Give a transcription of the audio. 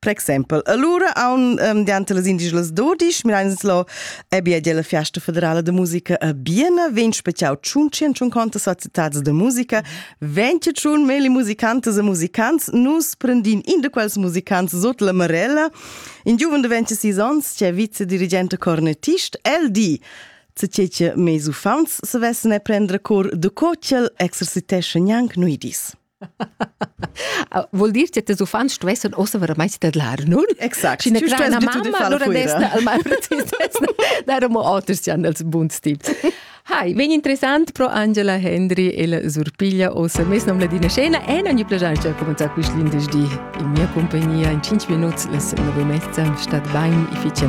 Per exempel, allura aun um, diante las indigelas dodisch, mirains lo e bia della Fiesta Federale de Musica a Biena, vegn special tschun centuncanta societads de musica, venti tschun meli musicantes e musicants, nus prendin in de quels musicants sot la Marella, in giuven de 26 ans, c'è vice-dirigente cornettist, el di, se cece meis uffants se vessen e prendre cor de co ciel exercitesce gnanc nuidis. Vuol dir che tes uffants stuessan ossa veramente tadlar, non? Exact. Sch'ina grana mamma allora desta al mal Darum oters jan els buns tips. Hai, vegn interessant pro Angela Hendry e la Surpiglia ossa mes nom ladina scena e non gli piace cominciare quest lindes di in mia compagnia in 5 minuti la semana vomezza stat bain efficient.